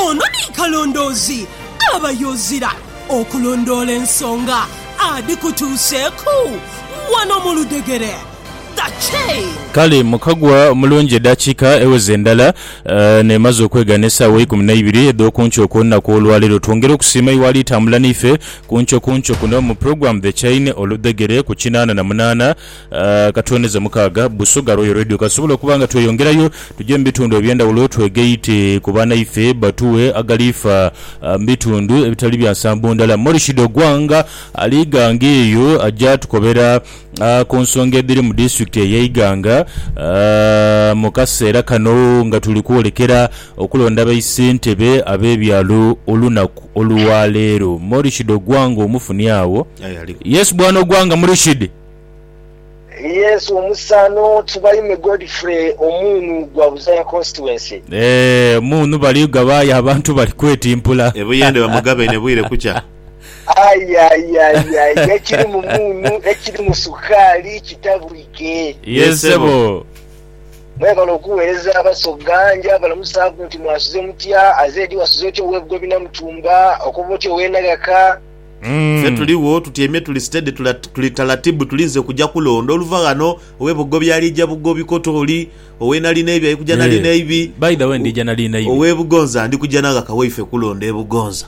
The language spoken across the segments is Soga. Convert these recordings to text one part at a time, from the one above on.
Ono ni kalondoozi aba y'ozira okulondoola ensonga adhikutuuseeku wano mu ludhegere. The Chain. Kale mukagwa omulungi edaakiika eweza endala n'emaze okwegana esaawa eikumi naibiri edh'okunkyo okw'olunaku olwaleero. Twongera okusiima iwe alitambula naife kunkyo kunkyo kuno mu pulogulaamu The Chain, Oludhegere, ku kinaana na munaana Ka twendeze mu kaaga Busoga Royal Radio kasobola okuba nga tweyongerayo tuje mu bitundu eby'endhawulo twegaite ku banaife batughe agaliifa mu bitundu ebitali bya nsambo ndala. Morishido Ogwang ali Iganga eyo aja tukobera ku nsonga edhiri mu disitulikiti eye Iganga mu kaseera kano nga tuli kwolekera okulonda ba issentebe ab'ebyalo olunaku olwa leero. Morishido Ogwang omufunye agho? Yes, Bwana Ogwang. Murishid. Yes omusano tubayime Godfrey omuunu gwa Buzaya constituency. Eeh omuunu bali gaba aye abantu bali kwetimpula. E Buyende bamugabaine bwire kukya. Aye aye aye aye ekiri mu muunu ekiri mu sukaali kitabwike. Yes sebo. Mwebale okuwereza Abasoga, nja balamusaaku nti mwasuze mutya, aze edi wasuze otya owe Bugobi Namutumba, okoba otya owe Naghaka, Ffe tuligho, tutyaime tuli steady, tuli taratibu tulinze kuja kulonda oluva ghano. Owe Bugobi alija Bugobi kota oli, owe Nalinaibi ali kuja Nalinaibi, owe Bugonza ndi kuja naghaka waife kulonda e Bugonza.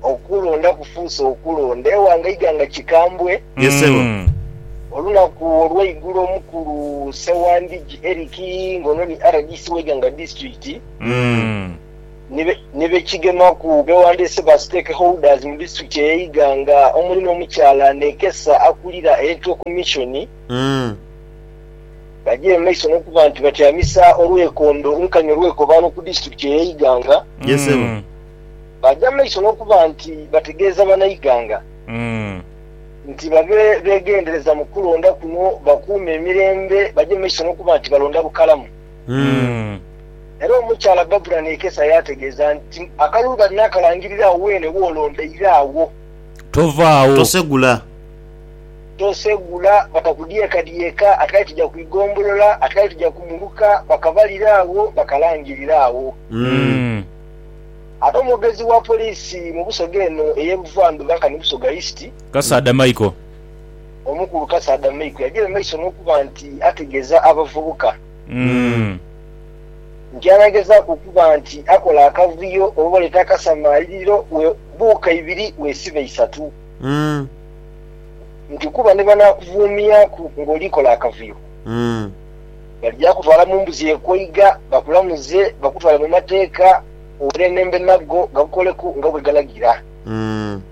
Okulonda kufuuse okulonda ewange eighanga kikambwe. Ye sebo. Olunaku olweigulo omukulu Ssewandigi Eric nga ono ni rdc w'eighanga disiturikiti, ni be kigemaku bewandiise ba stake holders mu district eye Iganga omuli n'omukyala Nekesa akulira Electoral Commission bagya emaiso n'okuba nti batyamisa olwekondo nkani olwekobaano ku district eye Iganga bagya maiso n'okuba nti bategeeza banaiganga nti babe begendereza mu kulonda kuno bakuume emirembe bagye maiso n'okuba nti balonda bukalamu. Era omukyala Barbara Nekesa yaategeeza nti, Akalulu kati naakalangirira agho weene w'olondaire agho. Tovaawo. Tosegula. Tosegula. Batakudyekadyeka. Ati kale tuja ku igombolola. Ati kale tuja ku muluka. Bakabalira agho, bakalangirira agho. Ate omwogezi wa poliisi mu Busoga eno ey'e Buvandhuba nkani Busoga East, Kasaadha Michael Omukulu Kasaadha Meiko yagira mumaiso n'okuba nti ategeeza abavubuka nti anagezaaku okuba nti akola akavuyo oba oleeta akasamaaliriro webuuka ibiri wesiba isatu nti kuba ni banaakuvuumiaku ng'oli kola akavuyo balija kutwala mu mbuzi ekoiga bakulamuze bakutwale mu mateeka owerenembe nago gakukoleku nga bwegalagira.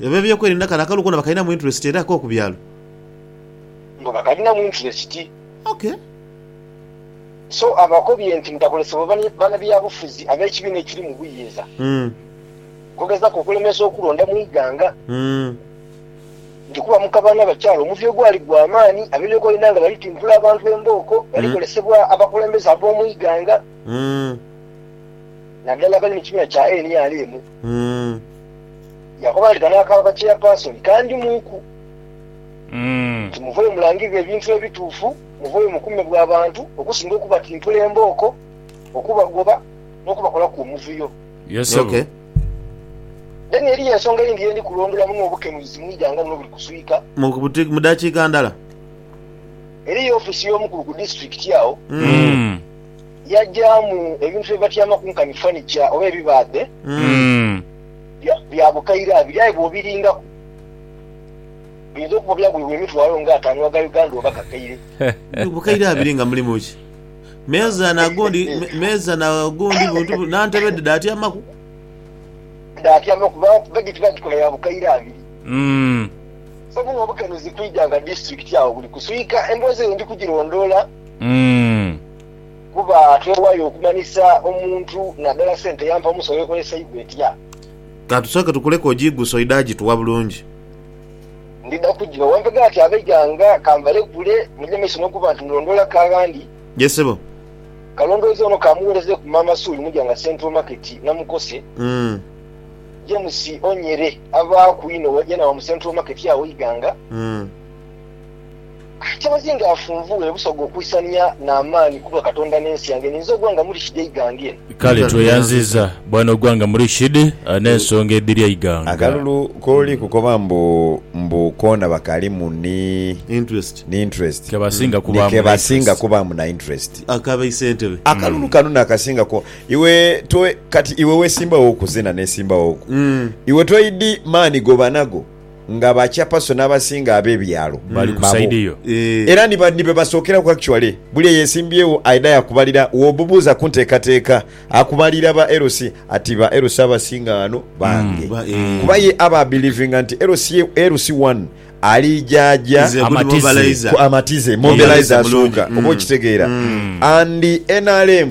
Ab'ebyokwerinda kano akalulu koona bakalinamu interesiti era k'oku byalo. Mbu bakalinamu interesiti. Okay. So abakobye nti mutakolesebwa banabyabufuzi ab'ekibiina ekiri mu buyinza okugezaku okulemesa okulonda mu ighanga. Nti kuba mu kabano abakyala omuvyo gwali gwa maani, ab'ebyokwerinda nga bali timpula abantu embooko, bali kolesebwa abakulembeze ab'omu ighanga, nadala abali mu kibiina kya nrm. Umm. Yaakoba nti, Kano akaaba ka chairperson kandimwiku nti muveyo mulangirire ebintu ebituufu, muveyo mukuume bwa bantu okusinga okubatimpula embooko, okubagoba, n'okubakolaku omuvuyo. Yes ssebo. Then eriyo ensonga eyindi ye ndi kulondolamu n'obukenuuzi mu ighanga lino obuli kuswika. Mu dakiika ndala. Eriyo ofiisi y'omukulu ku disiturikiti agho. Umm. Yajaamu ebintu bye batyamaku nkani fanica oba ebibaadhe bya bukaire abiri aye bw'obiringaku biyinza okuba byagulibwa emitwalo nga ataanu aga Uganda oba kakaire. Bukaire abiri nga mulimu ki? Meeza na gundi, meeza na gundi buntu bu, na ntebe dhe dhaatyamaku? Dhaatyamaku kuba bedi tibagikola ya bukaire abiri. So buno obukenuzi kwidha nga disitulikiti agho buli kuswika. Emboozi eyo ndi kugirondoola. Kuba twewayo okumanyisa omuntu nadala sente yampa omusawo ekoleseibwa etya. Ka tusooke tukuleku ogiigusa oidhe agituwa bulungi. Ndidha kugiba wampega nti abe ghange ka mbalekule muje maiso n'okuba nti mulondoolaku aghandi. Ye sebo. Kalondooze ono ka mugholezeeku Maama Suuli Muja nga Central Market namukose. James Onyere abaaku inho waja nawa mu Central Market agho Iganga. Kyabazinga yafunvugha ebusoga okwisania n'amaani ku bwa Katonda n'ensi yange ninze ogwanga Murishidi eighanga eno. Kale tweyanziza bwana ogwanga Murishidi n'ensonga edhiri eighanga. Akalulu kooli kukoba mbu mbu koona bakalimu ni interest ni kebasinga kubaamu na interest. Akalulu kano nakasinga ku iwe to kati iwe wesimbawo ku zena nesimbawo ku iwe toidi maani gobanago. nga ba chapaso n'abasinga abe byalo Bali ku babo. side yo. Eh. Era ni ba- ni be basookeraku actually. Buli eyesimbyewo aidha yakubalira, wobubuuza ku nteekateeka akubalira ba LC ati ba LC abasinga ghano bange. Ba- eh. Kuba ye aba abelivinga nti LC ye- LC one ali jaaja Is a good Amatize. mobilizer. ku amatize mobilizer Mobilizer asooka mulungi. oba okitegeera and nrm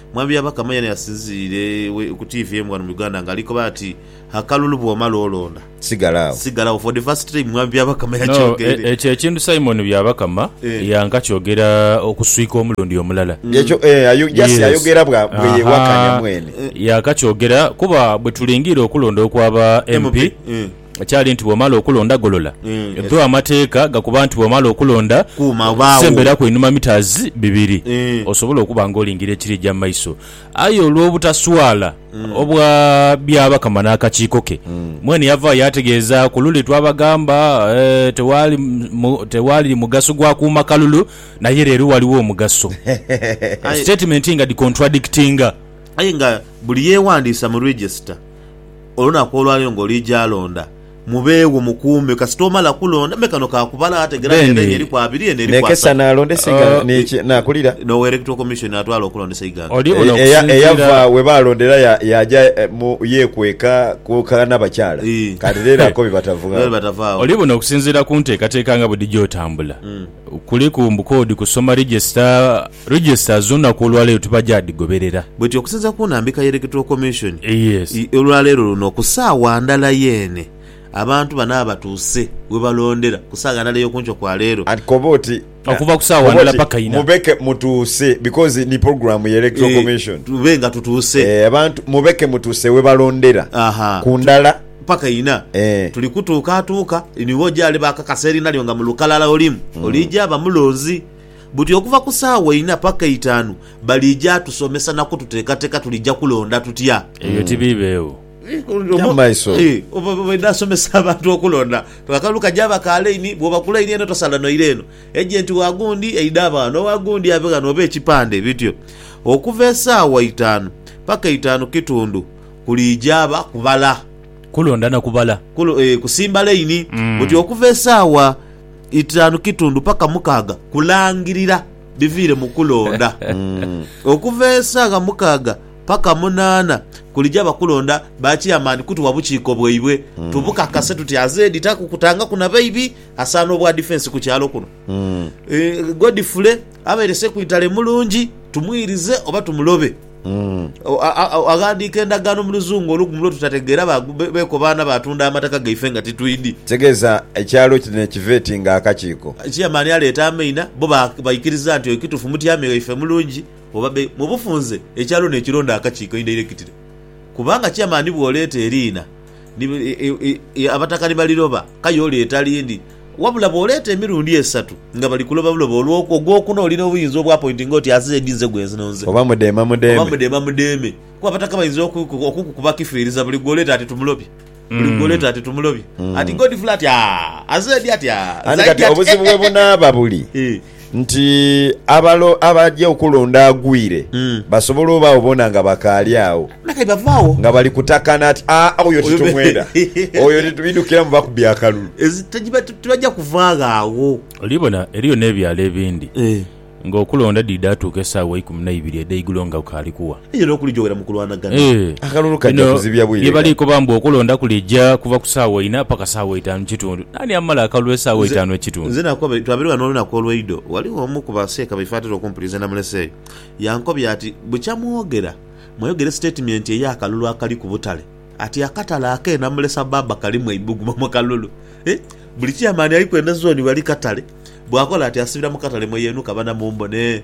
Mwami Byabakama yena yasinziriire ku TV emu ghano mu Uganda nga ali koba ati, Akalulu bw'omala olonda, Sigala agho. sigala agho. For the first time Mwami Byabakama No, e- yakyogeire. ekyo ekintu Simon Byabakama Eh. yankakyogera okuswika omulundi omulala. Ekyo, eh, ayo- just Yes. ayogera bwa- Aha. bweyewakanya mwene. Yakakyogera kuba bwe tulingiire okulonda okw'aba MP, MP, eh. Ekyali nti bw'omala okulonda golola. Dho amateeka gakoba nti bw'omala okulonda, semberaku einhuma mitas bibiri osobole okuba nga olingira ekiri eja mu maiso. Aye olw'obutaswala obwa Byabakama n'akakiiko ke, mwene yavaayo yaategeezaaku, Lule twabagamba tewaali mugaso gwa kuuma kalulu naye leero ghaligho omugaso. Sitetimenti nga dhi contradictinga. Aye nga buli yeewandiisa mu Register. Olunaku olwa leero ng'oliija londa, mubeegho mukuume kasita omala kulonda. Me kano ka kubala ategera nti endhagi eriku abiri, eno eriku asatu. N'owa Electoral Commission n'atwala okulondesa eighanga. Eyava we baalondera yaaja yeekweka ku kanabakyala kati leero akobye batava agho. Oli buno okusinziira ku nteekateeka nga bwedhija otambula. Kuliku mbu koodi kusoma register, register zona ku olwaleero tubagyadhigoberera. Bwetyo okusinza ku nambika ye Electoral Commission Yes. i olwaleero luno ku saawa ndala yeene abantu bano abatuuse webalondera ku saaga ndala eyokunkyo kwa leero. And koba oti Okuva ku saawa koba ndala oti paka ina. mubeke mutuuse because ni program ye Electoral Commission. Tube nga tutuuse. Eeh abantu mubeke mutuuse webalondera Aha. ku ndala. Mpaka ina. Tuli kutuukaatuuka ni wo gy'ali bakakasa eriina lyo nga mu lukalala olimu. Oliija ba mulonzi. Buti okuva ku saawa ina paka eitaanu, baliija tusomesa na kututeekateeka tuliija kulonda tutya. Ebyo tibiibeegho. Obaidha asomesa abantu okulonda. Akalulu kajaaba ka laini, bw'obakulaini eno tosala noira eno. Ejenti wa gundi aidha aba ghano, owa gundi ave ghano oba ekipande. Bityo. Okuva esaawa itaanu paka itaanu kitundu. Kuliija ba kubala. Kulonda na kubala. Kulu, eh, kusimba laini. Buti okuva esaawa itaanu kitundu paka mukaaga kulangirira biviire mu kulonda. Okuva esaagha mukaaga paka munaana kuliija ba kulonda ba Chairman kutugha bukiiko bwaibwe tubukakase tuti aze editaku kutangaku na baibi asaana obwa defence ku kyalo kuno. Eh, Godfrey abeere Ssekwiitale mulungi, tumwirize oba tumulobe? Aghandiika endagaano mu luzungu olugumu lwe tutategeera beekobaana baatunda amataka gaife nga titwidhi. Tegeeza ekyalo kino ekiva eti nga akakiiko. Cheyamaani aleeta amaina, bo baikiriza nti ekitufu mutyami ghaife mulungi oba be. Mu bufunze ekyalo nekironda akakiiko eindairekitire kubanga cheyamaani bw'oleeta eriina abataka ni baliroba, kaye oleeta lindi. Wabula bw'oleeta emirundi esatu nga bali kuloba buloba olwo okwo ogw'okuna olina obuyinza obwapointinga oti aze edi nze gwe nzino nze. Oba mudeema mudeeme. Oba mudeema mudeeme. Kuba bataka bainza okukukuba kifiiriza buli gw'oleeta ati tumulobye. Buli gw'oleeta ati tumulobye. Ati Godfrey ati, Aa, aze edi ati, aa, zaidi ati, eh, eh, eh, eh. Ani kati obuzibu we bunaaba buli. Nti abalo abaja okulonda agwire, basobole obaagho boona nga bakaali agho. Nga kati bava agho. Nga bali kutakana ati, Aa, oyo titumwenda. Oyo titubidhukira mu bakubi akalulu. Tibaja kuvaagho agho. Oli bona, eriyo n'ebyalo ebindi, ng'okulonda dhiidha atuuka esaawa eikumi na ibiri edh'eigulo nga bukaali kugha. Aidha n'okulijoghera mu kulwanagana. Akalulu kaja kuzibya bwire. Bino bye bali koba mbu okulonda kulija kuva ku saawa inha paka saawa itaanu kitundu. Naani amala akalulu esaawa itaanu ekitundu? Nze nakoba, twabere ghano olunaku olweidho, ghaligho omu ku ba seeka baife atera okumpuliza namulese eyo, yankobya ati, Bukya mwogera, mwayogera esitatimenti ey'akalulu akali ku butale. Ati akatale ak'e Namulesa Baba kalimu eibugumo mu kalulu. Hee! Buli chairman aliku eno zooni ghali katale. Bwakola ati asibira mu katale mwe yeenhuka bana mumbone.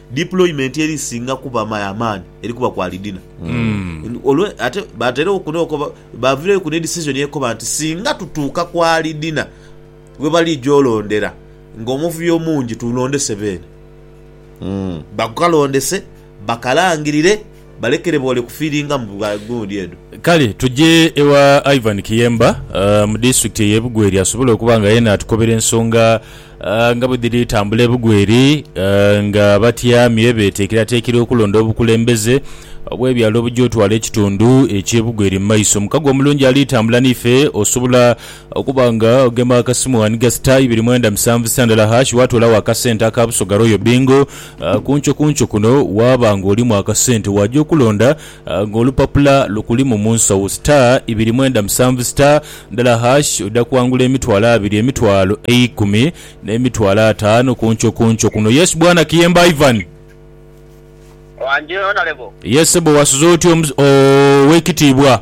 Deployment eri singa kuba my amaani eri kuba kwa lidina olwe ate baterewo kuno okoba bavireyo ku ne decision ekoba nti singa tutuuka kwa lidina webalija olondera nga omuvuyo omungi tulondese beene bakalondese bakalangirire Balekere boole kufiiringa mu bwa gundi edho. Kale tuje ewa Ivan Kiyemba mu disitulikiti eye Bugweri asobole okuba nga yena atukobera ensonga nga bwedhiri tambula ebugweri nga abatyami bwebetekeratekera okulonda obukulembeze obwebyalo obuja otwala ekitundu ekye Bugweri mu maiso. Mukago omulungi ali tambula nife osobola okuba nga ogema akasimu ghaniga star ibiri mwenda musanvu star ndala hash watolawo akasente aka Busoga Royal Bingo Ku nchokuncho kuno waaba ng'olimu akasente waaja okulonda ng'olupapula lukulimu mu nsawo, star ibiri mwenda musanvu star ndala hash oja kwangula emitwalo abiri, emitwalo eikumi n'emitwalo ataanu ku nchokuncho kuno. Yes Bwana Kiyemba Ivan. Wangi Honourable. Yes sebbo wasuze otya Owekitiibwa.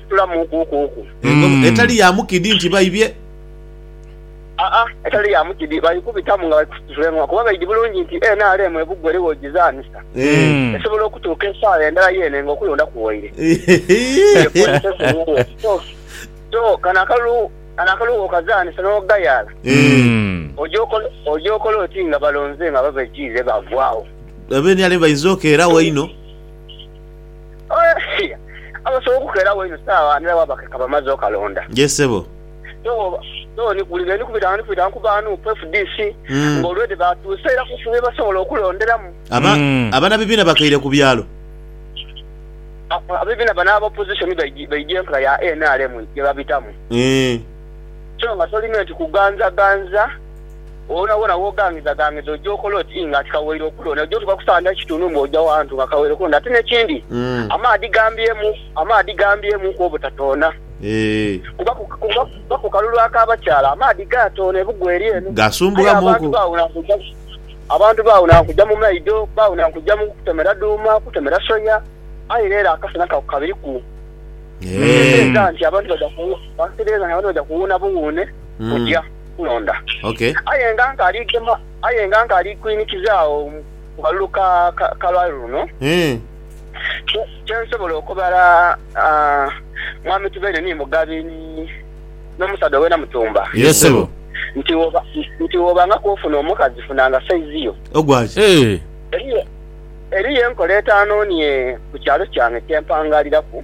Situlamu kuukuuku. Engo Mm. etali ya mukidi nti baibye. Aa, etali ya mukidi baikubitamu nga bali kusituza engoma kuba baidhi bulungi nti nrm ebugwa eriwo ogizaanisa. Eh. Mm. Esobola okutuuka esaala endala yeene nga okulonda kuwaire. Eyo princess eyeeyo. So, so kano akalulu, kano akalulu bw'okazaanisa n'ogayaala, Eh. Mm. oja okola, oja okola oti nga balonze nga babajiire baagwagho. Aba nrm bainza okeerawo einho. Abasobola okukeerawo eino saagha ndala bwaba ke kaba amaze okalonda. Yee sebo. Though ni buli lwe ndi kubita nga ndi kubita ku ba nup, fdc nga already baatuuse era kuufuna bye basobola okulonderamu. Abana bibiina bakaire ku byalo. Abebiina bano aba opposition baidha enkola ya nrm gye babitamu. So nga tolina nti kuganzaganza. Wonawona w'oghangizaghangiza oja okola oti nga ti kawaire okulonda. Oja otuuka ku saawa ndala kitundu mbu oja wantu nga kawaire okulonda. Ate n'ekindi, amaadhi gambyemu, amaadhi gambyemuku obutatoona. Kuba kuba ku kalulu ak'abakyala amaadhi gaatoona ebugwa eri eno. Aye abantu baawuna nkugya, abantu baawuna nkugya mu maido, baawuna nkugya mu kutemera dhuuma, kutemera soya. Aye leero akasana ka kabiriku. Nteebereza nti abantu baja, nteebereza nti abantu baja kuwuuna buwuune kugya. Katonda. Aye nga nkali gema, aye nga nkali kwinikiza agho mu kalulu ka kalwali luno, kyensobola okubala Mwami Tubeine ni Mugabi ni n'omusaadha owena Mutumba, nti wobangaku ofuna omukazi funanga saizi yo. Eriyo enkola etaanonie ku kyalo kyange kye mpangaliraku.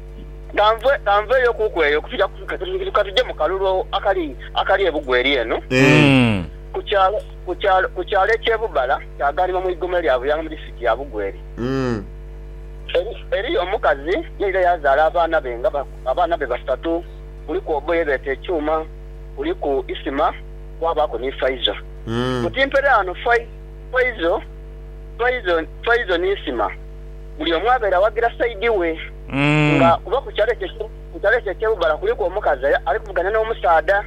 Kanveeyo kuku eyo ka tuje mu kalulu akali ebugwa eri eno ku kyalo eky'e Bubala, kyaghanibwa mu igoma erya Buyanga mu disitirikiti ya Bugweri. Eriyo omukazi yaidha yaazaala abaana be nga abaana be basatu. Kuliku obo ye beeta Ekyuma, kuliku Isima, kwabaaku ni Faizo. Ku timpere ghano Faizo ni Isima. buli omu abeere awagira saidi we nga kuba ku kyalo ekyo ku kyalo ekyo eky'e Bubala kuliku omukazi ali ali kuvuganya n'omusaadha.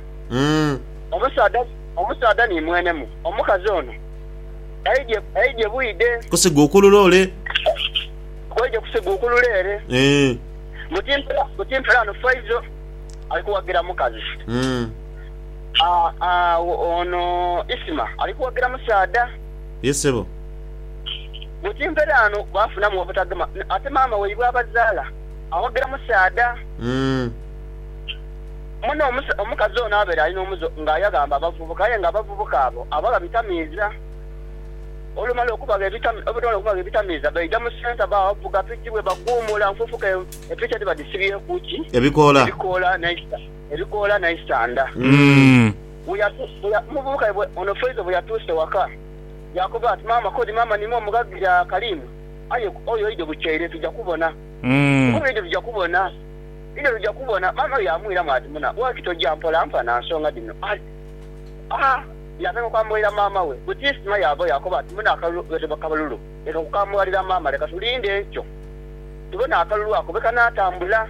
Omusaadha omusaadha ni mwenemu omukazi ono aidye aidye bwidhe. Kusiga ukulule ole. Aidye kusiga ukulule ere. Buti mpela buti mpela ano Faizo ali kuwagira mukazi. Aa aa ono Isma ali kuwagira musaadha. Ye sebo. Buti mperaano bwafunamu obutagema ate maama waibwe abazaala awagira musaadha mune. Omukazi ono abaire ali n'omuze nga yaghamba abavubuka aye nga abavubuka abo abagha bitamiiza. Olumala okubagha ebitamiiza baidha mu centre bavuga piki bwebaguumula nfuufuka epiki edhiba dhisibyeku ki? Ebikoola n'eisanda. Omuvubuka waibwe ono Faizo bweyatuuse ewaka, Yaakoba ati, Maama, k'odi maama niime omughagire akalimu, aye oyo oidhe bukyeire tuja kubona. Nkugambye oidhe tuja kubona. Oidhe tuja kubona. Maama we yaamwiramu ati, Muna, lwaki toja mpola nfana nsonga dhino? Aa! Yaatandika okwambulalira maama we. Bwe tiisima yaavawo, yaakoba ati, Muna, akalulu ghetebwa kabalulu. Leka kukambulalira maama, leka tulinde enkyo tubone akalulu ako bwe kanaatambula.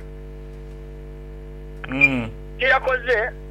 Kye yakoze.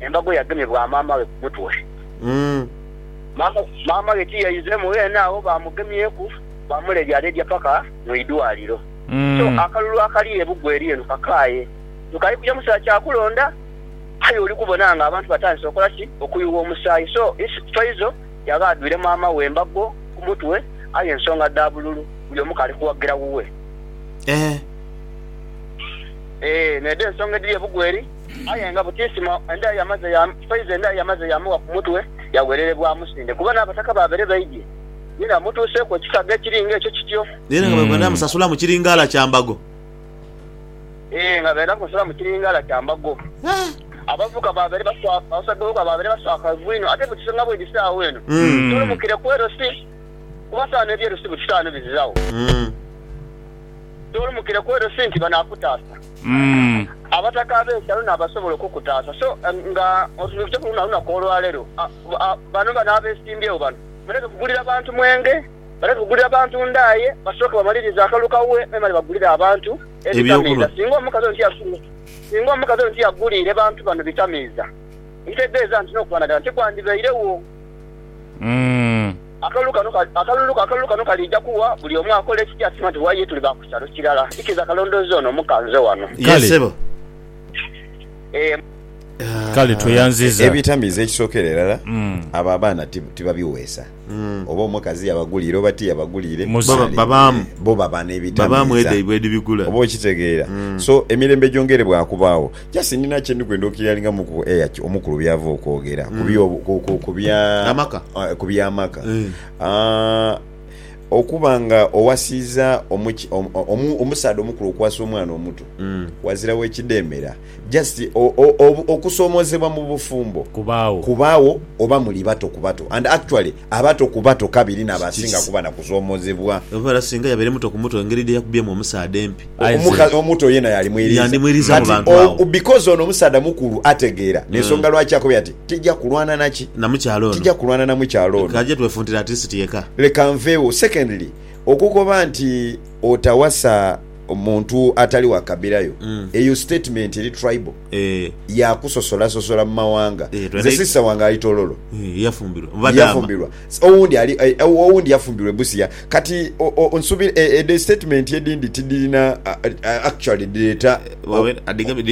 embago yagemye bwa maama we ku mutwe. Maama we ti yaizeemu ghene agho, baamugemyeku baamuleedyaleedya paka mu idwaliro. So akalulu akali e Bugweri eno kakaaye. Nkali kuja mu kiseera kya kulonda, aye oli kubona ng'abantu batandise okola ki? Okuyuwa omusaayi. So Ins Twaizo yaba adhwire maama we embago ku mutwe, aye ensonga dha bululu buli omu k'ali kuwagira wuwe. Eeh, n'edho ensonga edhiri e Bugweri. Aye nga butiisimo endagho yamaze ya Faiza endagho yamaze yaamugha ku mutwe, yaghererebwa amusinde kuba n'abataka baabere baidhye ye n'amutuuseeku ekisaga ekiri nga ekyo kityo. Naye nga bwebenda musasulamu kiringaala kya mbago. Ee, nga benda kumusasulamu kiringaala kya mbago. Abavubuka baabere baswaka, abasaadha b'ebiwaku baabere baswakaivu inho. Ate butise nga bwidhise agho eno, tolumukire ku Erosi, kuba sawa n'eby'Erosi butise ghano bizighawo. Tolumukire ku Erosi nti banaakutaasa. Abataka ab'ekyalo n'abasobola okukutaasa. So nga otutuukiteku luno olunaku olwaleero, bano bano abesimbyewo bano baleme kugulira bantu mwenge, baleme kugulira bantu ndaaye, basooke bamalirize akalulu ka Uwe memale bagulire abantu ebitamiiza. Singa omukazi ono tiyasuubira, singa omukazi ono tiyaguliire bantu bano bitamiiza, ekitegeeza nti n'okubanagana tikwandibairegho. Akalulu kano, akalulu, akalulu kano kaliija kuwa buli omu akola ekija asiima nti bw'aye tuli ba ku kyalo kirala. Ikiriza kalondooze ono omuka nze wano. Ye, Kale. ssebo. Eeh. Kale tweyanziza. Ebitamiiza ekisookera irala, abo abaana ti, tibabiweesa. Oba omukazi yabaguliire oba tiyabaguliire, Muze. Baba, ali, babaamu. bo baba Babaamu n'ebitamiiza. edha ibwe edhibigula. Oba okitegeera? So, emirembe gyongeere bwakubaagho. Just nina kyendi kwenda okirialingamu ku eya ki- omukulu byava okwogera ku byo ku- ku- ku bya Amaka. Ah, ku by'amaka Eh. Ah, okuba nga owasiiza omuki- om- omu- omusaadha omukulu okuwasa omwana omuto wazirawo ekidheemera just o- o- obu- okusoomoozebwa mu bufumbo Kubaagho. kubaagho oba muli bato ku bato and actually Abato ku bato kabiri n'abasinga kuba na kusoomozebwa. Omuvala singa yabaire muto ku muto, engeri dhe yakubyemu omusaadha empi. Aye nze. Omukazi omuto yeena yalimwiriiza. Yandimwiriiza mu Kati bantu o, agho. because ono omusaadha mukulu ategeera, n'ensonga lwaki akobye ati, Tija kulwana na ki? Na mukyala ono. Tija kulwana na mukyala ono. K'aje twefuntire at least yeka. Leka nveewo. Secondly, okukoba nti otawasa. omuntu atali wa kabira yo mm. eyo statement eri tribal eh. yakusosola sosola mu mawanga eh, nze sister wange ali tololo eh, yafumbirwa yafumbirwa owundi ali eh, owundi yafumbirwa ebusia kati nsubira eh, eh, the statement edindi tidirina uh, actually direta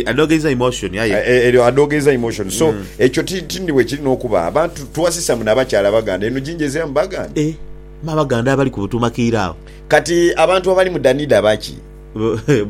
adogeza emotion yaye eryo adogeza emotion so mm. ekyo tindi wekiri nokuba abantu tuwasisa muna abakyala baganda eno jinjezera mu baganda eh, mabaganda abali kubutumakiira awo Kati abantu abali mu Danida baki?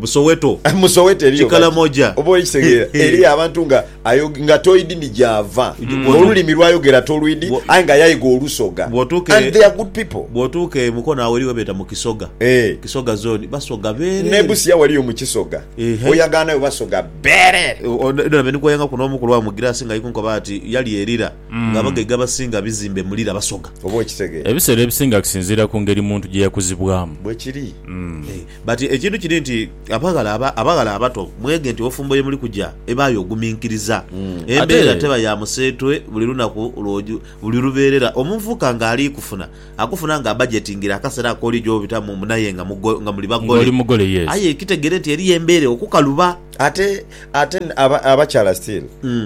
Mu Soweto. Mu Soweto eriyo baki? Kikalamoja. Oba okitegeera, eriyo abantu nga ayo, nga toidi ni gy'ava, olulimi lw'ayogera tolwidi, aye nga yaiga Olusoga. Bw'otuuka e. And they are good people. Bw'otuuka e Mukono agho eriyo ghebeeta mu Kisoga. Eeh. Kisoga zooni, Basoga beerere. N'e Busia waliyo mu Kisoga. Ehe. Oyagaanayo Basoga beerere. Ono, Edward Benikwayanga ku n'omu ku lwa Mugirasi nga ali kunkoba ati, yali erira. nga abagaiga abasinga bizimbe mu lira basoga. Oba okitegera. Ebiseera ebisinga kisinziira ku ngeri muntu gye yakuzibwamu. Bwe kiri. Eeh. But ekintu kiri nti abaghala aba, abaghala abato mwege nti obufumbo ye muli kugya ebaayo oguminkiriza. Embeera Ate. teba ya museetwe buli lunaku lw'oju, buli lubeerera. Omuvubuka nga ali kufuna, akufuna nga abajetingire akasera ak'oli gy'obitamu mbu n'aye nga mugo, nga muli Nga bagole. oli mugole, yes. Aye kitegere nti eriyo embeera okukaluba. Ate ate aba, abakyala still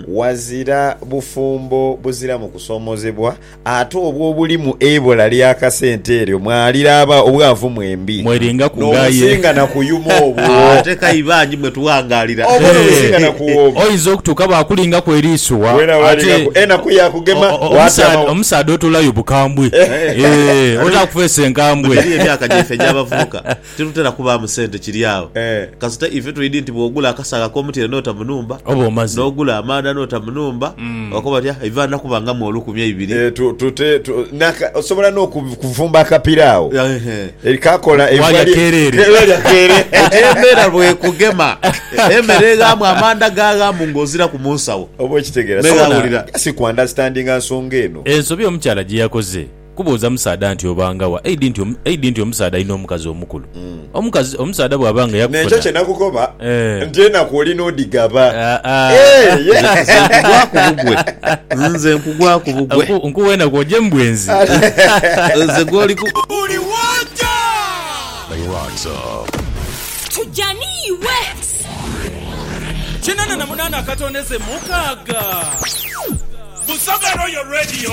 wazira bufumbo buziramu kusomozebwa ate obwo obulimu eibola lya kasente eryo mwaliraba obwavu mwembi Mwelingaku nga aye. nobusinga na kuyuma obwo Ate kai bangi mwe tughangalira. Obwo no businga na kuwoma. Oyinza okutuuka baakulingaku eriiso wa Wena ate walingaku enaku ya kugema o- o- watyama omusaadha wa. omusaadha otoolayo bukambwe. Eeh, otaakufeesa enkambwe. Mbu giri emyaka gyaife egy'abavubuka. Tirutera kubaamu sente kiri agho. Kasita ife twidhi nti bw'ogula akasaagho ak'omutyere n'ota mu nhumba, n'ogula amaadha n'ota mu nhumba, bakoba bati, Ah, iva nnaku bangamu olukumi eibiri. Osobola n'okuvumba akapira agho kakola eibwa lya keerere. Eyo embeera bw'ekugema, emere eghaamu, amaandha gaaghaamu ng'oziraku mu nsawo. Oba okitegeera. Ghulira. Just ku understandinga nsonga eno. Ensobi omukyala gye yakoze. Kubuuza musaadha nti obanga wa, eidhi nti eidhi nti omusaadha alina omukazi omukulu. Omukazi, omusaadha bw'aba nga yakufuna. N'ekyo kye nakukoba nti enaku oli n'odhigaba. Nze nkugwaku bugwe. Nze nkugwaku bugwe. Nkuwa enaku oje mu bwenzi. Nze gw'oli ku. Buli w'oja. They rise up. Tuja n'iwe. Kinana na munana akatondeze mukaaga. Busoga Royal Radio.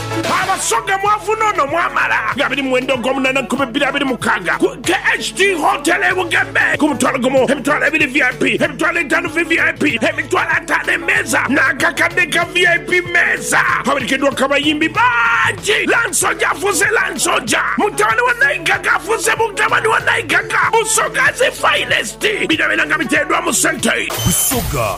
Abasoga mwavuna ono mwamala nga abiri mwenda ogwomunana ku bibiri abiri mukaaga ku KHT Hotel e Bugembe ku mutwalo gumu, emitwalo ebiri VIP, emitwalo etaanu VVIP, emitwalo ataano emeeza n'akakadde ka VIP meeza. Awerekeddwaku abayimbi bangi, Lansoja afuuse Lansoja, mutabani wa Naigaga afuuse mutabani wa Naigaga, Busoga's Finest bino byona nga biteereddwa mu sente. Busoga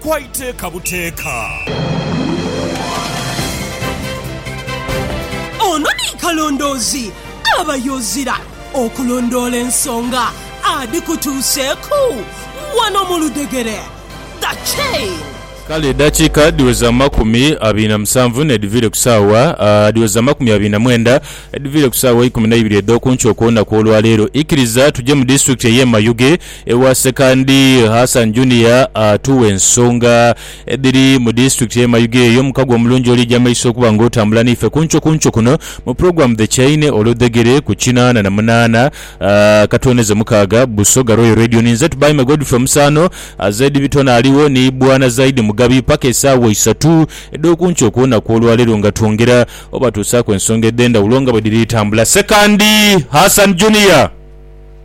kwa iteeka buteeka. Ono ni kalondoozi aba yozira okulondoola ensonga adhikutuuseeku wano mu ludhegere. The Chain. Kale edhakiika dhiweza amakumi abiri na musanvu n'edhiviire ku saawa dhiweza amakumi abiri na mwenda edhiviire ku saawa ikumi na ibiri edh'oku nkyo okw'olunaku olwaleero. Ikiriza tuje mu disitulikiti ey'e Mayuge. Ewa Sekandi Hassan Junior atuwa ensonga edhiri mu disitulikiti y'e Mayuge eyo mukago omulungi olija maiso okuba nga otambula naife kunkyo kunkyo kuno mu pulogulaamu The Chaine olwo dhegere ku kinaana na munaana katwoneze mukaaga Busoga Royal Radio. Ninze Tubaime Godfrey Omusaano, Zaidi Bitone aligho ni Bwana Zaidi Mugabi paka esaawa isatu edh'okunkyo okw'olunaku olwaleero nga twongera obatuusaaku ensonga edhendhawulo nga bwedhiri tambula. Sekandi Hassan Junior!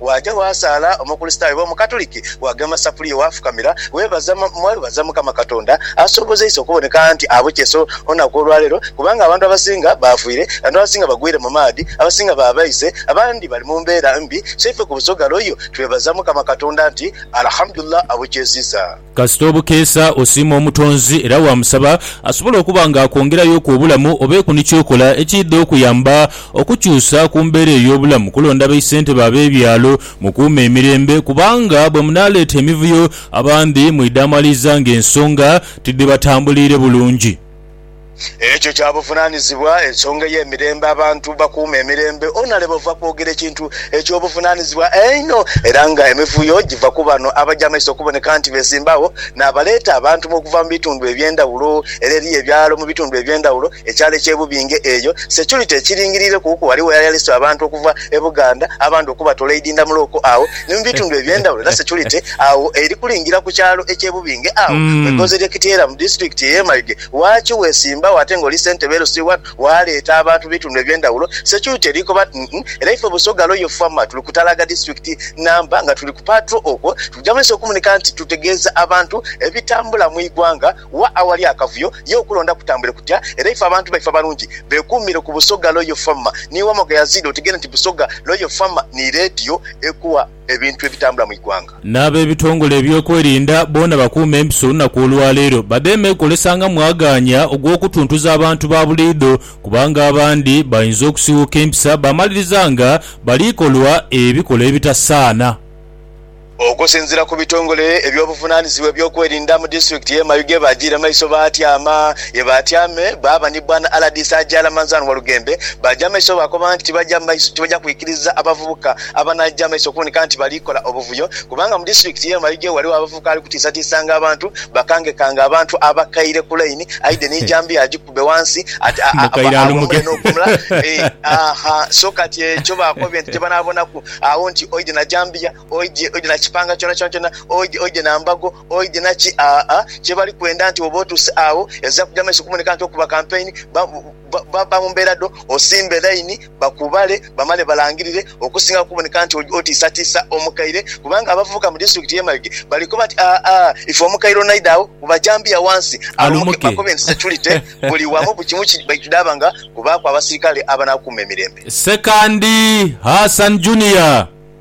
Waaja waasaala Omukurisitaayo oba Omukatuliki, waagema safuliya waafukamira weebaza mwebaza Mukama Katonda asobozeisa okuboneka anti abukyeso olunaku olwaleero kubanga abantu abasinga baafiire, abantu abasinga bagwire mu maadhi, abasinga baabaise, abandi bali mu mbeera mbi so ife ku Busoga Royal twebaza Mukama Katonda nti Alhamdulillah abukyeziza. Kasita obukeesa osiima Omutonzi era waamusaba asobole okuba ng'akwongerayoku obulamu obeeku ni ky'okola ekiidha okuyamba okukyusa ku mbeera ey'obulamu. Kulonda baisentebe ab'ebyalo mukuume emirembe kubanga bwe munaaleeta emivuyo abandhi mwidhaamaliza ng'ensonga tidhibatambuliire bulungi. Ekyo kya buvunaanizibwa, ensonga ey'emirembe, abantu bakuuma emirembe. Onaleba ova kwogera ekintu eky'obuvunaanizibwa einho era nga emivuyo giva ku bano abaja amaiso okuboneka nti beesimba agho n'abaleeta abantu mu okuva mu bitundu eby'endhawulo. Era eriyo ebyalo mu bitundu eby'endhawulo, ekyalo eky'e Bubinge eyo security ekiringiriire kuku. Ghaligho eyali aleese abantu okuva e Buganda abandi okubatoola e Idindamulo okwo agho ni mu bitundu eby'endhawulo era security Agho eri kulingira ku kyalo eky'e Bubinge agho mu igonza ery'e Kityera mu disitulikiti ey'e Mayuge. Waaki weesimbagho ate ng'oli ssentebe LC wano waaleeta abantu mu bitundu eby'endhawulo? Security erikoba nti, Uhmm, era ife Busoga Royal Farmer tuli ku Talaga disitulikiti Namba nga tuli ku patrol okwo tuja mu ensi okumunika nti tutegeeza abantu ebitambula mu igwanga. Wa awali akavuyo ye okulonda kutambule kutya era ife abantu baife abalungi beekuumire ku Busoga Royal Farmer. Ni Wamoga Yazid otegere nti Busoga Royal Farmer ni leediyo ekuwa. ebintu ebitambula mu igwanga. N'abebitongole ebyokwerinda boona bakuume empiso olunaku olwaleero badheeme kukolesa nga mwagaanya ogw'okutuntuza abantu ba buliidho kubanga abandi bainza okusiwuuka empisa baamaliriza nga baliikolwa ebikolwa ebitasaana. Okusinziira ku bitongole eby'obuvunaanizibwa eby'okwerinda mu disitulikiti y'e Mayuge baagiire maiso baatyama ye baatyame baaba ni Bwana RDC Agyala Manzan Walugembe baagya maiso baakoba nti tibaja kwikiriza abavubuka abanaagya amaiso okuboneka nti bali kola obuvuyo kubanga mu disitulikiti y'e Mayuge ghaligho abavubuka abali kutiisatiisanga abantu, bakangekanga abantu abakaire ku laini aidhe ni jambiya agikube ghansi ate awumule n'okuwumula haa so kati ekyo baakobye nti kyebanaabonaku agho nti oidhe na jambiya, oidhe na kipanga kyonakyona, oidhe na mbago, oidhe na ki aa kyebali kwenda nti bw'oba otuuse agho ezira kugya maiso okuboneka nti okuba kampeyini. Bba mu mbeera dho osimbe laini bakubale bamale balangirire okusinga kuboneka nti otiisatiisa omukaire kubanga abavubuka mu disitulikiti y'e Mayuge bali koba nti aa ife omukaire onaidha agho ku bajambiya wansi alumuke bakobe nti securite buli wamu buli kimu kidhaaba nga kubaaku abasirikale abanaakuuma emirembe. Ssekandi Hassan Junior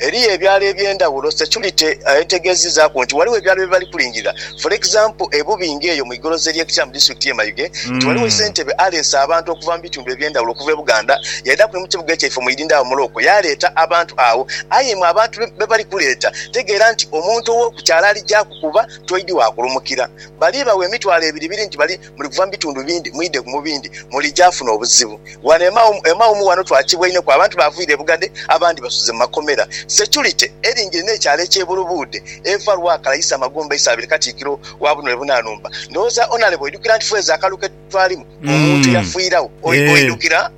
Eriyo ebyalo eby'endhaghulo. Securite ategeezizaaku nti ghaligho ebyalo bye bali kulingirira for example e Bubinge eyo mu igoloza ery'e Kikyamu disitulikiti y'e Mayuge nti ghaligho ssentebe aleese abantu okuva mu bitundu eby'endhaghulo okuva e Buganda yaidhaku ni mu kibuga ekyaife omwidindho agho mu Looko yaaleeta abantu agho aye imwe abantu be bali kuleeta tegeera nti omuntu ow'oku kyalo aligyaku kuba toidhi wa kulumukira bali bagho emitwalo ebiribiri nti bali Muli kuva mu bitundu bindi mwidhe mu bindi, mulija afuna obuzibu. Ghano e Mawumu, e Mawumu ghano twakibwa inho ku, abantu baaviira e Bugadhe, abandi basuze mu makomera. Securite eringire n'ekyalo eky'e Bulubuudhe, eva Lwakala yisa Magomba yisa abiri Katikkiro wa buno e Bunanumba. Ndhowooza Honourable oidhukira nti fweeza akalulu ke twalimu, omuntu yafiiragho. Oidhukira?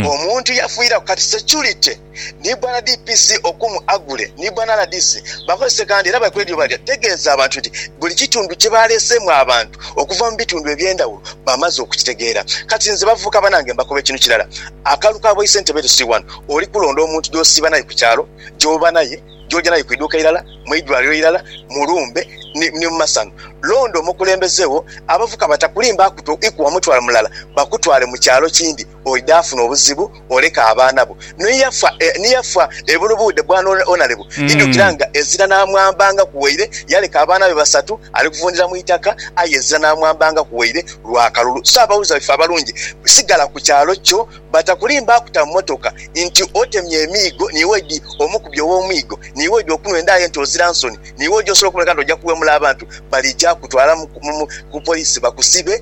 Omuntu yafiiragho. Kati securite. ni bwana DPC Okumu Agule ni bwana rdc bakozese kandi era bali kwedhie bali tegeeza abantu nti buli kitundu kye baleeseemu abantu okuva mu bitundu eby'endhawulo bamaze okukitegeera. Kati nze bavubuka banange mbakoba ekinhu kirala, akalulu ka bwaisentebe Lusi I oli kulonda omuntu gy'osiiba naye ku kyalo, gy'oba naye, gy'oja naye ku idhuuka eirala, mu idwaliro eirala, mu lumbe ni mu masano. Londa omukulembeze wo abavubuka batakulimbaaku to ikuwa mutwalo mulala bakutwale mu kyalo kindi. oidha afuna obuzibu oleka abaana bo ni yafa ni yafa ebulu bude bwana onarebu idhukira nga ezira namwambangaku waire yaleka abaana be basatu ali kuvundira mu itaka aye ezira namwambangaku waire lwa kalulu so abawuliza baife abalungi sigala ku kyalo kyo batakulimba akuta mu motoka nti otemye emiigo niiwe oidhi omukubye owomwiigo niiwe oidhi okunwa enda ye nti ozira nsoni niiwe oja osobola okumuleka nti oja kuwemula abantu balija kutwala mu ku police bakusibe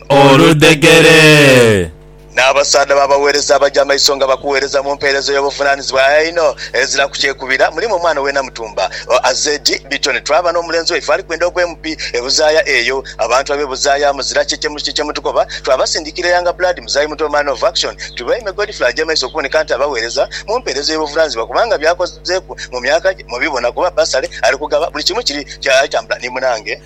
oludhegere. N'abasaadha b'abaweereza abaja amaiso nga bakuweereza mu mpeereza ey'obuvunaanyizibwa aye einho eziraku kyekubira, mulimu omwana we Namutumba, Azed Bitoni twaba n'omulenzi waife ali kwenda ogw'e Mupi e Buzaaya eyo. Abantu ab'e Buzaaya muzira kye kye muti kye mutukoba, twabasindikira e Yanga Blood, Muzayi Muto, Man of Action, Tubaime, Godfrey aja amaiso okuboneka nti abaweereza mu mpeereza ey'obuvunaanyizibwa kubanga byakozeeku mu myaka gye mubibona kuba bbasale ali kugaba buli kimu kiri kya ali tambula ni munange.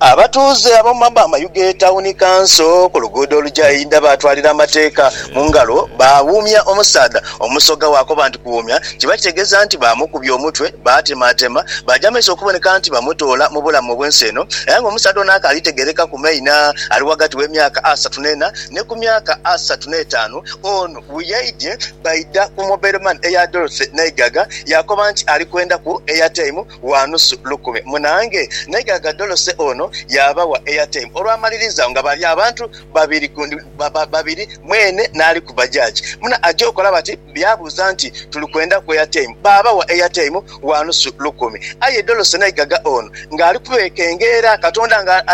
Abatuuze ab'omu mabba amayu g'etawuni kanso ku luguudo oluja e Idha baatwalira amateeka mu ngalo baawuumya omusaadha. Omusoga bw'akoba nti kuwuumya kiba kitegeeza nti baamukubya omutwe, baatemaatema baaja mu maiso okuboneka nti bamutoola mu bulamu obw'ensi eno era ng'omusaadha ono akaali tegeereka ku maina ali ghagati w'emyaka asatu n'ena ni ku myaka asatu n'etaanu. Ono bwe yaidye baidha ku Mobile Money eya Dorothy Naigaga yaakoba nti ali kwendhaku Airtime. wa nusu lukumi munaange, naye gh'agadholose ono yaabawa airtime. Olwamaliriza agho nga bali abantu babiri ku babiri, mwene n'ali ku bajaji muna aja okola bati yaabuuza nti, Tuli kwendaku airtime? Baabawa airtime wa nusu lukumi. Aye dholose naye ghaga ono ng'ali kubeekengeera, Katonda nga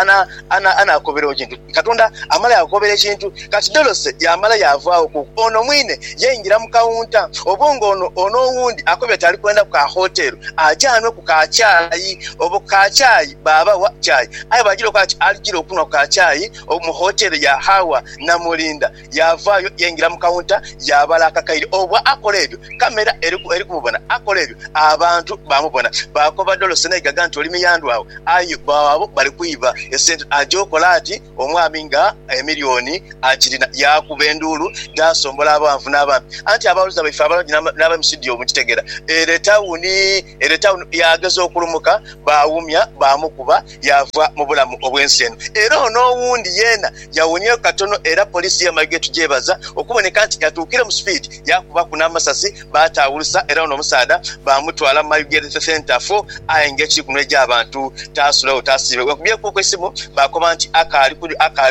anaakobera ogi nti. Katonda amala yaakukobera ekintu. Kati Dorothy yaamala yaavaawo ku ono mwine, yaingira mu kawunta. Oba nga ono, ono owundi akoba ati ali kwenda ku ka hotel aje anwe ku ka chai. Obo ku ka chai baabawa chai. Aye bwajira okoba ati alijira okunwa ku ka chai mu hotel ya Hawa Namulinda. Yaavaayo yaingira mu kawunta yaabala akakaire. Obwa akola ebyo, kamera eri ku, eri kumubona. Akola ebyo, abantu baamubona. Baakoba dolo Senaigaga nti, Oli miyandhu agho. Aye bbo abo bali kwiba esente. Aja okola ati, omwami nga emilioni akirina. Yaakuba enduulu, yaasombola abaanvu n'abampi. Anti abaawuliza baife abalungi n'abali mu situdiyo mukitegeera. Ere etawuni, ere etawuni. Yaageza okulumuka, baawumya, baamukuba, yaava mu bulamu obw'ensi eno. Era ono owundi yeena Yawonyayo katono era poliisi y'e Mayiga etugyebaza okuboneka nti yatuukire mu sipiidi yaakubaku n'amasasi baataawulusa era ono omusaadha baamutwala mu Mayuge Health Centre fo aye ng'ekiri kunhwa egy'abantu taasulewo taasiibe. Weenkubyeku eisimu baakoba nti akaali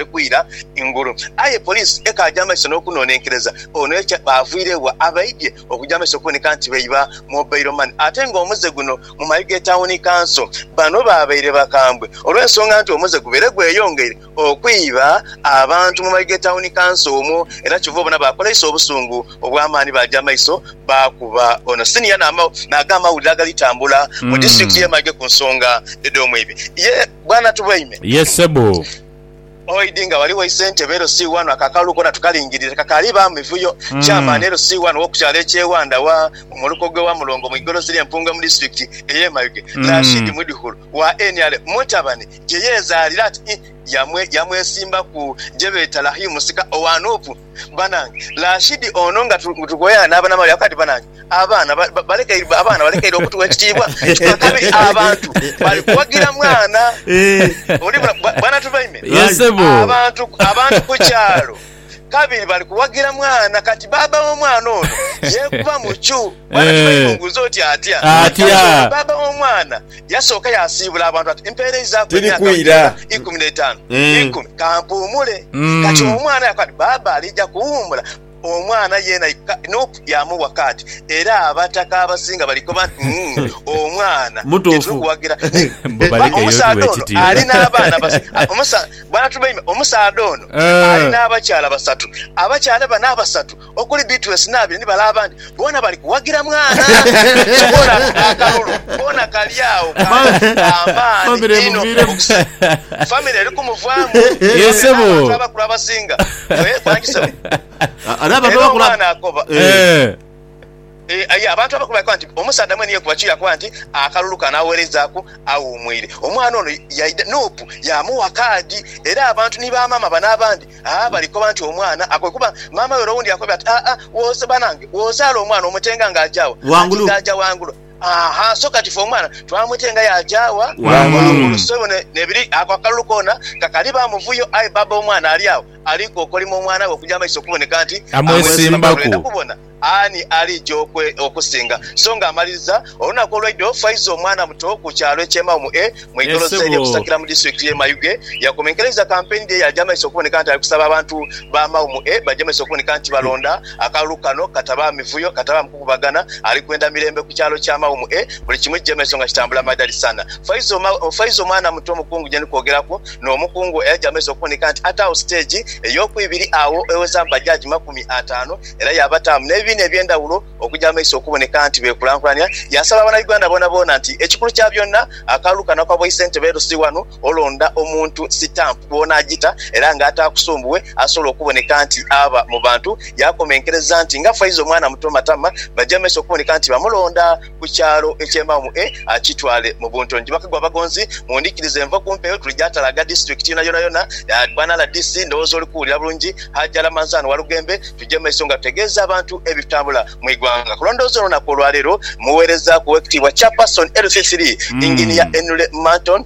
kwira ngulu aye poliisi ekaaja amaiso n'okunoonenkereza ono ye kye baavwirebwa abaidhye okuja amaiso okuboneka nti beiba Mobile Money ate ng'omuze guno mu Mayuge Tawuni Kanso bano baabaire bakambwe olw'ensonga nti omuze gubaire gweyongeire okwiba abantu mu mayi g'etawuni kanso omwo era kyova obona baakola iso obusungu obw'amaani baaja amaiso baakuba ono siniya n'ag'amawulire agali tambula mu disitulikiti y'e Mayuge ku nsonga edh'omwibi ye Bwana Tubweine. Ye ssebo. Oid nga wali waise entebe LC wano ako akalulu koona tukalingirire kakaaliibaamu mivuyo. Chairman LC wano w'okukyalo eky'e Wandawa mu muluka ogw'e Wamulongo mu igolozi ly'e Mpungwe mu disitulikiti ey'e Mayuge, Rashid Mwidhukulu wa nrm mutabani gye yeezaalira ati yamwesimbaku gye beeta Lahii musika owa Nup. Banange Rashidi ono nga tukoyana n'aba Namale yagamba nti banange abaana balekeire okutugha ekitiibwa ekya kabiri abantu bali kuwagira mwana. Oli bula bwana Tubaime abantu ku kyalo. kabiri bali kuwagira mwana. Kati bbaabba w'omwana ono yeekuba mu kyu. Mwana kiba kimubuuza oti atya? Kale bbaabba w'omwana yasooka yaasiibula abantu ati, Mpeerezaaku emyaka gina ikumi n'etaanu. Ikumi. Ka mpuumule. Kati omwana yakoba ati, Bbaabba aliija kuwummula. Omwana yeena nup yaamuwa kaati. Era abataka abasinga bali kukoba nti, Umm, omwana ye tuli kuwagira. Naye bba omusaadha ono ali n'abaana basatu. Bantu baime, omusaadha ono ali n'abakyala basatu. Abakyala bano abasatu okuli Beatrice n'abiri ni bale abandi boona bali kuwagira mwana. Kyokka ono ati akalulu koona kali agho kalimu ka maani inho bukuse. Famire eri kumuvaamu aye n'abantu abakulu abasinga bwebanja sebo. Era omwana akoba. Aye abantu abakulu baakoba nti, Omusaadha mwene yekuba ki yakoba nti akalulu kano agholerezaaku aghumwiire? Omwana ono yaidha Nup yaamugha kaadi era abantu ni bamaama bano abandi aa bali koba nti omwana akooye kuba maama we ere owundi yakobye ati, Aa wooza banange wozaala omwana omutenga nga aja wa? Ati nga aja wangulu. Aahaa so kati ffe omwana twamutenga yaaja wa? Wangulu. So bino nebiri ako akalulu koona kakali ba muvuyo aye bbaabba w'omwana ali agho ali kokolima omwana we okuja amaiso okuboneka nti amwesimbaku. Ani aliija okwe okusinga? So nga amaliriza olunaku olwaidho Faiza omwana muto ku kyalo Ekyemagho mu e mu igolosa erye Busakira mu disitulikiti ye Mayuge yakomenkereiza kampeyini dhe yaja maiso okuboneka nti alikusaba abantu ba Magho mu e baje maiso okuboneka nti balonda akalulu kano katabaamu mivuyo, katabaamu kukubagana ali kwenda mirembe ku kyalo kya Magho mu e buli kimu kije maiso nga kitambula madhali sana. Faiza Faiza omwana muto omukungu gyendi kwogeraku no mukungu eyaja maiso okuboneka nti ataagho siteegi eyokuibiri agho ewezaamu bajaji makumi ataanu era yaabataamu n'ebibiina eby'endhawulo okugya mu maiso okuboneka nti beekulankulania. Yaasaba Banauganda boonaboona nti ekikulu kya byonna akalulu kano aka bwaisentebe LC wano olonda omuntu sitampu bw'onaagita era nga ataakusumbuwe asobola okuboneka nti aba mu bantu. Yaakomenkereza nti nga Faiza omwana muto matama bagya mu maiso okuboneka nti bamulonda. ku kyalo eky'embawo e Akitwale mu Buntongi bakagwa abagonzi mundhikirize nva ku mpeewo tuli gyatalaga district yona yona yona bwana rdc ndhowooza oli kuwulira bulungi Hajji Ramanzan Walugembe tugye mumaiso nga tutegeeza abantu ebitambula mu igwanga kulondooza olunaku olwaleero muweereza ku owekitiibwa Chairperson LC3 Engineer Enule Manton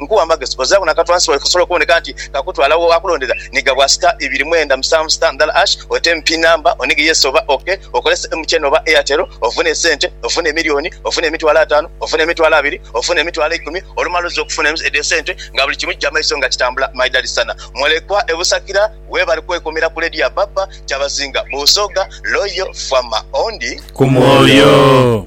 Nkuwa amagezi ozagho na katwansi waife osobole okuboneka nti kakutwala wo akulondera ni gabwa sita ibiri mwenda musanvu sita ndala ash oteme pin number onige yes oba ok okolese MTN oba Airtel ofune esente ofune emilioni ofune emitwalo atano ofune emitwalo abiri ofune emitwalo eikumi olumala oze okufuna edho esente nga buli kimu kija maiso nga kitambula my dad sana mulekwa e busakira webale kwekumira ku radio ya baba kyabazinga busoga loyal farmer ondi ku mwoyo.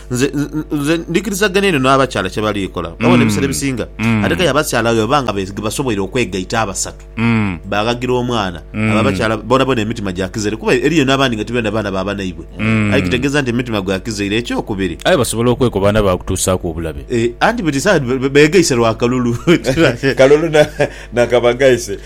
nze nze ndikirizagana eno n'abakyala kye bali kola mm. babona ebiseera ebisinga mm. ate kale abakyala bwe baba nga basoboire okwegaita abasatu mm. baghagira omwana abo abakyala bonabona emitima gyakizere kuba eriyo n'abandi nga tibenda baana baba naibwe aye kitegeeza nti emitima gwakizaire ekyokubiri aye basobola okweku baana bakutuusaaku obulabe eh, anti beti saa begaise lwakalulu kalulu nakabagaise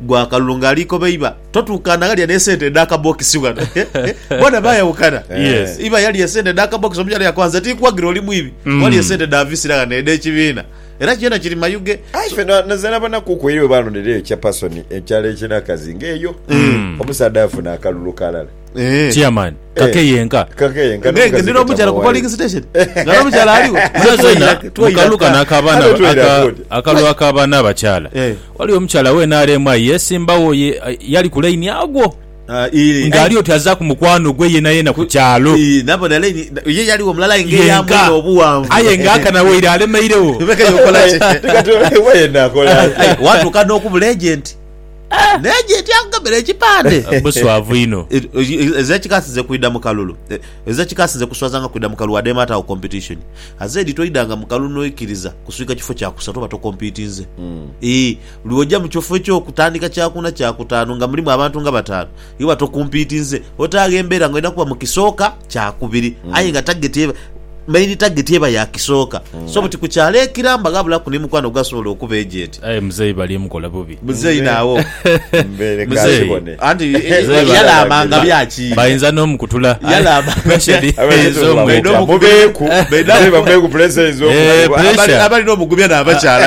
Gwa akalulu nga ali koba iba totukana ghalya ne sente edha kabokisi ghano bona bayawukana Yes. iba yalya esente edha kabokisi omukyala yakoba nze tinkuwagira oli mwibi Mm. walya esente dha visira ghano edhe kibiina era kyona kiri mayuge Aye fe na- naze nabonaku ku eyo bwebaalondera eyo kya pasoni ekyalo ekinakazi ng'eyo omusaadha afuna akalulu kalala Eh. Chairman, kake eh. yenka. Kake yenka. Ngenge ndira omukyala ku polling station. Ngara omukyala aliwo. Muna zoina mukaluka nakabana akalu akabana abakyala. Eh. Wali omukyala wena alemwa yesimbawo yali ku line agwo. Ah, nga ali oti aza ku mukwano gwe yena yena ku kyalo nabona line ye yali omulala inge yamuna obuwanvu aye nga akana weire alemeirewo watuka n'okubula agenti Naye gyeti akugambira ekipande. Buswavu inho. Ezo ekika asinze kwidha mu kalulu. Ezo ekika asinze kuswaza nga kwidha mu kalulu wade emaata agho competition. Aze edhi toidhanga mu kalulu noikiriza kuswika kifo kya kusatu oba to competinze. Ii, Buli woja mu kifo ekyo kutandika kya kuna kya kutaanu nga mulimu abantu nga bataanu. Iba tokumpiitinze otaagho embeera nga olina kuba mu kisooka kya kubiri aye nga tageti eba, main target eba ya kisooka so buti ku kyalo ekiramba ghabulaku ni mukwano ogwasobola okuba ejenti. Aye muzeeyi bali mukola bubi. Muzeeyi nawo Mbeere ka Muzeeyi. kibone. anti Muzeeyi bali- yalaamanga bya ki? Bayinza n'omukutula Yalaama. pressure Abaire eyinza tubula Baine mutya? omugubi- Mubeeku. baine- Muzeeyi bamubeeku pressure eyinza Eh, okumukuba. pressure. Abali- Abalina omugumya n'abakyala.